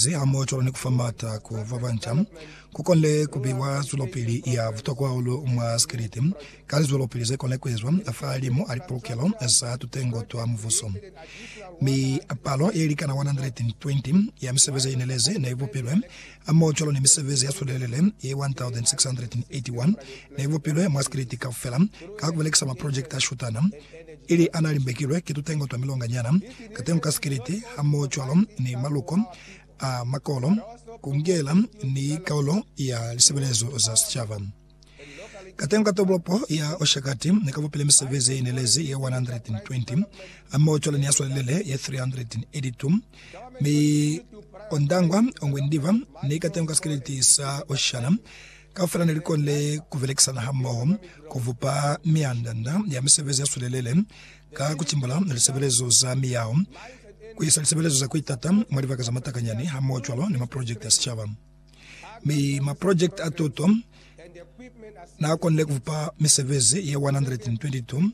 Ze hamoocwalo ni ku fa maata ku ba banca, ku konile ku biwa zwelopili ya butokwa hahulu mwa sikelete ka lizwelopili ze konile ku ezwa fahalimu a lipolokelo za tutengo twa mubuso. Mi palo ye likana 120 ya misebezi ye inelezi ne i bupilwe, hamoocwalo ni misebezi ya sulelele ye 1,681 ne i bupilwe mwa sikelete kaufela ka ku belekisa maprojekiti a shutana. ili a n'a limbekilwe ki tutengo twa milonganyana, katengo ka sikiliti, hamohocwalo ni maluko a makolo, ku ngela ni kaulo ya lisebelezo za sicaba. Katengo ka tolopo ya Oshakati ne ka bupile misebezi ye inelezi ye 120, hamohocwalo ni ya swalelele ye 382, mi ondangwa ongwe ndiba ni katengo ka sikiliti sa Oshana, Kaufela ne li konile ku belekisana hamoho ku bupa mianda-nda ya misebezi ya sulelele ka ku timbula lisebelezo za miyao, ku isa lisebelezo za ku itata mwa libaka za matakanyani hamoho cwalo ni maprojekiti a sicaba. Mi maprojekiti a tuto n'a konile ku bupa misebezi ye 122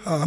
ha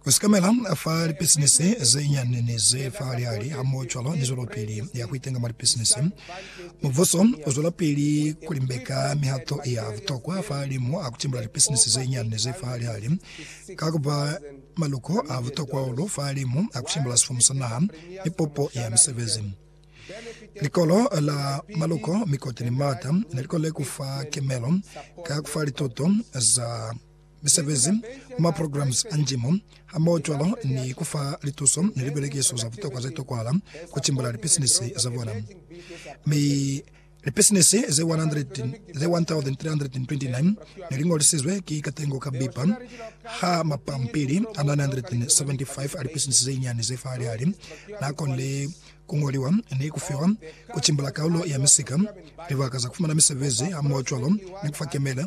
Ku sikamela fa lipisinisi ze nyani ni ze fa lihali hamohocwalo ni zwelopili ya ku itenga mwa lipisinisi, mubuso u zwelapili ku limbeka mihato ya butokwa fahalimu a ku timbula lipisinisi ze nyani ni ze fa lihali ka ku ba maluko a butokwa hahulu fahalimu a ku timbula sifumu sa naha ni pupo ya misebezi. Likolo la maluko, mikoti ni maata ne li konile ku fa kimelo ka ku fa lituto za misebezi mwa maprograms a njimo, hamohocwalo ni ku fa lituso ni libelekiso za butokwa ze tokwahala ku timbula lipisinisi za bona. Mi lipisinisi ze 1,329 ne li ñolisizwe ki katengo ka bipa ha mapampili a 975 a lipisinisi ze nyinyani ze fa hali-hali n'a konile ku ñoliwa ni ku fiwa ku timbula kaulo ya misika, libaka za ku fumana misebezi hamohocwalo ni ku fa kemela.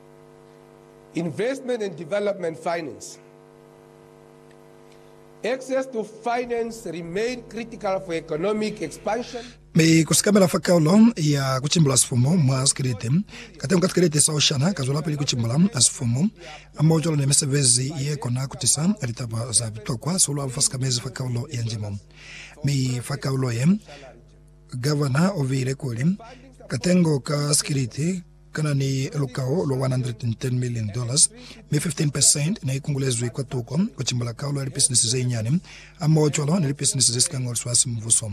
Investment and Development Finance, Access to finance remain critical for economic expansion. Mi ku sikamela fa kaulo ya ku cimbula sifumu mwa sikelete, katengo ka tikelete sa oshana ka zwelapili ku cimbula sifumu, hamoho cwalo ni misebezi ye kona ku tisa litaba za butokwa sihulu-hulu fa sikamezi fa kaulo ya njimo. Mi fa kaulo ye, Governor o viile kuli, Katengo ka sikelete, kana ni lukao lwa $110,000,000, mi 15 percent ne i kungulezwi kwa tuko ku cimbula kaulo ya lipisinisi ze nyani hamohocwalo ni lipisinisi ze si ka ñoliswa ha simubuso.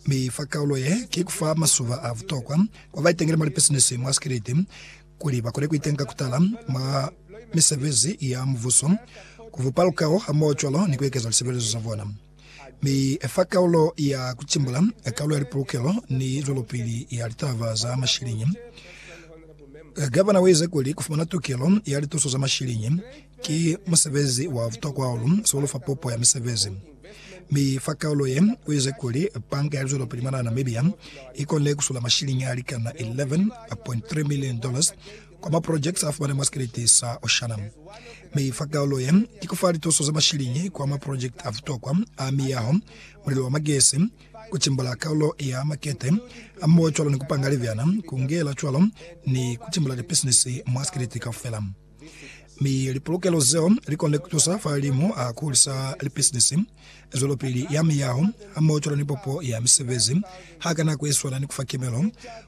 Mi fa kaulo ye, ki ku fa masuba a butokwa kwa ba itengile mwa lipisinisi mwa sikiliti kuli ba kone ku itenga ku tala mwa misebezi ya mubuso, ku bupa lukao hamohocwalo ni ku ekeza lisebelezo za bona. Mi fa kaulo ya kutimbula, kaulo ya lipulukelo ni zwelopili ya litaba za mashiliñi, Gavana uize kuli kufumana tukelo ya lituso za mashiliñi ki musebezi wa butokwa hahulu sihulu fa pupo ya misebezi. Mi fa kaulo ye, uize kuli Banka ya Lizwelopili mwanaa Namibia ikonile kusula mashiliñi alikana 11.3 million dollars kwa ma projects a fumana mwa sikelete sa Oceanum, mi fa kaulo ye i ku fa lituso za mashiliñi kwa ma project a butokwa a miyaho, mulilo wa magesi, ku timbula kaulo ya makete a moho cwalo ni ku panga libyana, ku ngela cwalo ni ku timbula lipisinisi mwa sikelete kaufela. Mi lipulukelo zeo li konile ku tusa fa limu a ku hulisa lipisinisi, zwelopili ya miyaho, hamoho cwalo ni popo ya misebezi ha ka nako ye swana ni ku fa kimelo